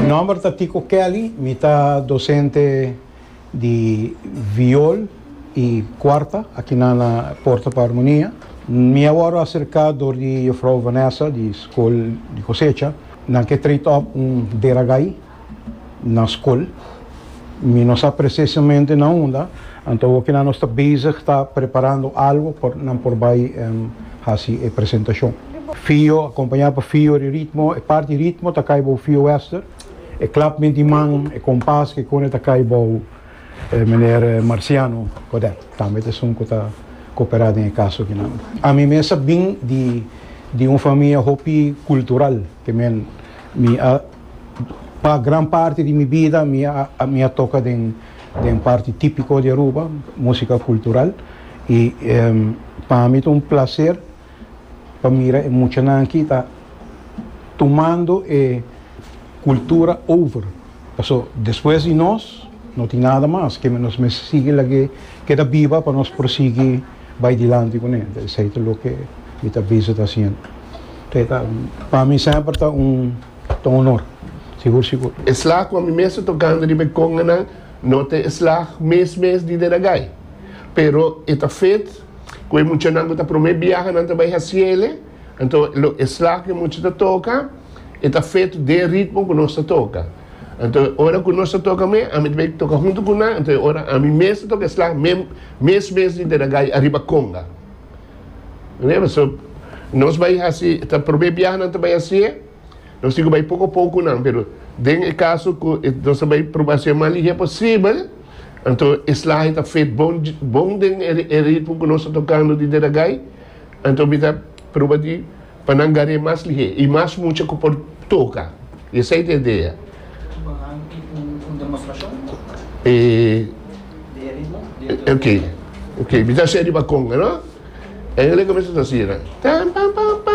Nomber ta Tico Kelly, mi ta docente di viol y cuarta aki nan na Porta pa Armonia. Mi a worde acerca door di Jufrouw Vanessa di School di Cosecha, nan ke trate op un deragai. na skol. Mi no sa presesamente na unda, anto awor kina nos ta bezig ta preparando algo pa nan por bai hasi e presentashon. Fio, akompañá pa fio di ritmo, e parti ritmo ta kai bou fio wester, e klapment di man, e kompas ke kone ta kai bou meneer Marciano Codet, tambe ta esun ku ta koperá den e kaso kinan. Ami mes a bin di un famia hopi kultural, ke men mi a. Pa gran parti di mi bida mi a mi a toka den den parti tipiko di Aruba, musika kultural, i pa mi ta un plaser pa mira e muchanan aki ta tumando e kultura over, paso despues di nos no tin nada mas, ke nos mester sigui lag'é keda biba pa nos por sigui bai dilanti kuné, esei ta loke mi ta bisa ta hasiendo, te ta pa mi semper ta un. ta un honor. Sigur sigur. E slag cu ami mes ta tocando riba e conganan no ta e slag mes mes di den agay. Pero e ta fet cu e muchanan cu ta prome biaha nan ta bay haciele, anto lo e slag cu e mucha ta toca e ta fet den ritmo cu nos ta toca. Anto e ora cu nos ta toca me ami ta bay toca hunto cu nan, anto e ora ami mes ta toca e slag mes mes di den agay ariba conga. Nè? Paso nos bai hasi, ta probé biaha nan ta bai hasié, nos tin ku bai poko poko ku nan, pero den e kaso ku nos ta bai probá hasié mas lihé posibel, anto e slahe ta fet bon, bon den e ritmo ku nos ta tokando di Deragai, anto mi ta proba di. Pa nan gar'é mas lihé i mas mucha ku por toka. I esei ta e dea. E. Oke, oke, mi ta hasié riba konga, no? Engeleka mester ta hasinan. Tampam, pam, pam.